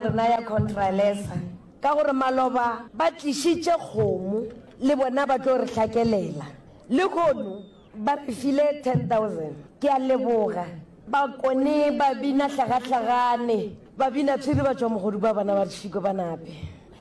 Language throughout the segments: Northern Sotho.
re naya khontralesa ka gore maloba ba tlišitše kgomo le bona ba tlo re hlakelela lehono ba re file 10000 ke a leboga ba kone ba bina hlagahlagane ba bina tshwiri ba tšwa mogodu ba bona ba re šiko ba nape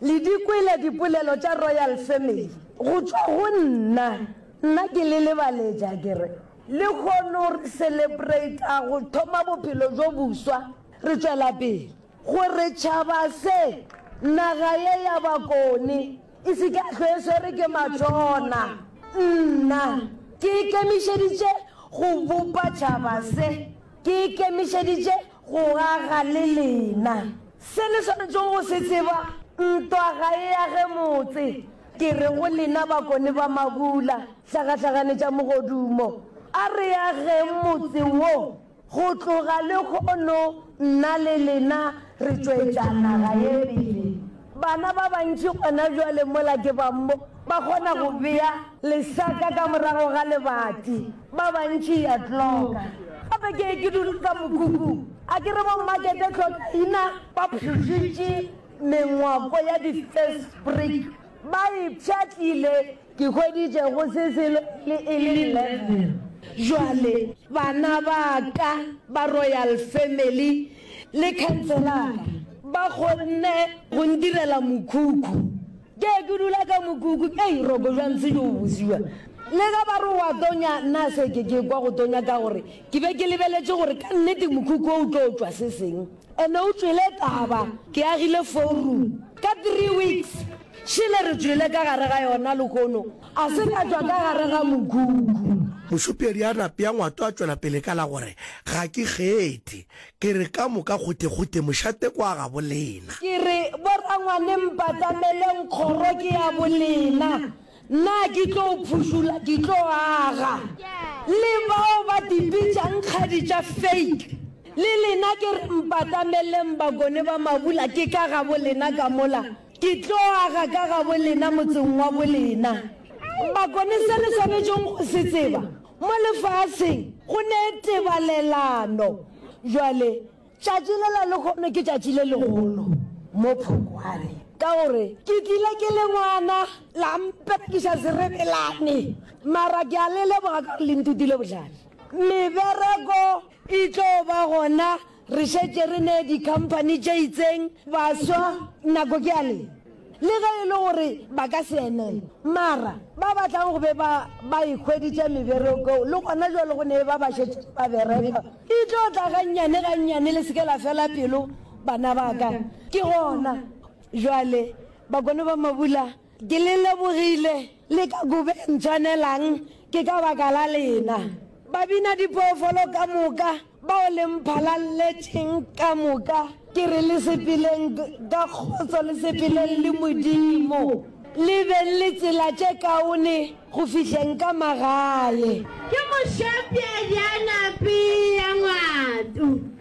le di kwele dipolelo tša royal family go tšwa go nna nna ke le lebaletša ke re lehono re celebrata go thoma bophelo bjo boswa re tšwela pele Gore tšhaba se, naga ye ya bakoni, e se ke ya hlwe e swerwe ke matšona, nna ke ikemišeditše go bopa tšhaba se, ke ikemišeditše go aga le lena. Se le swanetšego go se tseba, ntwa ga e age motse. Ke re go lena bakoni ba mabula, hlagahlaganetša mogodumo, a re ageng motse wo Go tloga lehono nna le lena re tšwetša naga ye pele. Bana ba bantši gona bjale mola ke ba mo ba kgona go bea lesaka ka morago ga lebati. Ba bantši ya tloka. Gape ke ke dula ka mokhukhung. A ke re bommakete tlhokaina ba pšhošitše mengwako ya di-first brick ba e pšhatlile Ke hweditše go se selo le e le eleven. Bjale, bana ba ka ba Royal Family le khanselara ba kgonne go ndirela mokhukhu. Ke ye ke dula ka mokhukhu, ei, ro kojwa ntshe tšo o busiwa. Le ge ba re o a tonya, nna se ke ke kwa go tonya ka gore ke be ke lebeletše gore ka nnete mokhukhu wo o tlo tšwa se seng. Ene o tšwele taba, ke agile four-room. Ka three weeks, Šele re tšwele ka gare ga yona lehono, a se ka tšwa ka gare ga mokhukhu. Mošupedi a napea ngwato a tšwela pele ka la gore, Ga ke kgethe. Ke re ka moka gothegothe mošate ke wa gabolena. Ke re, Borangwane mpatameleng, kgoro ke ya bolena. Nna a ke tlo phušula, ke tlo aga. Le bao ba dibitšang kgadi tša fake, le lena ke re mpatameleng, bakone ba mabula ke ka gabolena ka mola. Ke tlo aga ka gabolena motseng wa bolena. Bakone se le swanetšeng go se tseba, mo lefaseng go ne tebalelano. Bjale, tšatši lela lehono ke tšatši le legolo, Mophokwane, ka gore ke tlile ke le ngwana, la mperekiša serebelane, mara ke a le leboga ka gore le nthutile bohlale. Mebereko e tlo ba gona Re šetše re ne dikhamphani tše itseng baswa nako ke ya le le ge e le gore ba ka se emele, mara ba batlang go be ba ba ikhweditše meberekong le gona jwale go ne ba ba šetše ba bereka. E tlo tla gannyane gannyane, le se ke la fela pelo bana ba ka. Ke gona jwale bakone ba Mabula Ke le lebogile le ka kobeng tshwanelang ke ka baka la lena, babina dipoofolo ka moka bao le mphalalletšeng ka moka. Ke re le sepeleng ka kgotso le sepeleng le Modimo, le beng le tsela tše kaone go fihleng ka magae. Ke mošopša bja napi ya ngwatu.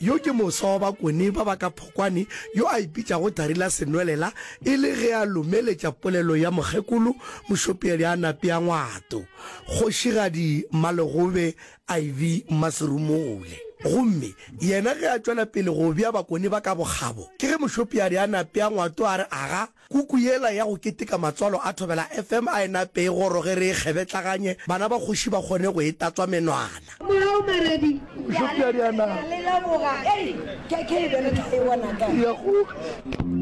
Yo ke moswa wa bakoni ba ba ka phokwane yo a ipitšago Thari la Senwelela e le ge a lomeletša polelo ya Mokgekolo Mošopeadi a Napea Ngwato, Kgošigadi Malegobe iv Mmaserumule. Gomme yena ge a tšwela pele go bea bakoni ba ka bokgabo, ke ge Mošopeadi a Napea Ngwato a re, Aga! Kuku yela ya go keteka matswalo a Thobela FM a e nape e goroge re e kgebetlaganye, bana ba kgoši ba kgone go e tatswa menwana. Morao Maredi ya leboga, ke ke e be re tla e bona kae?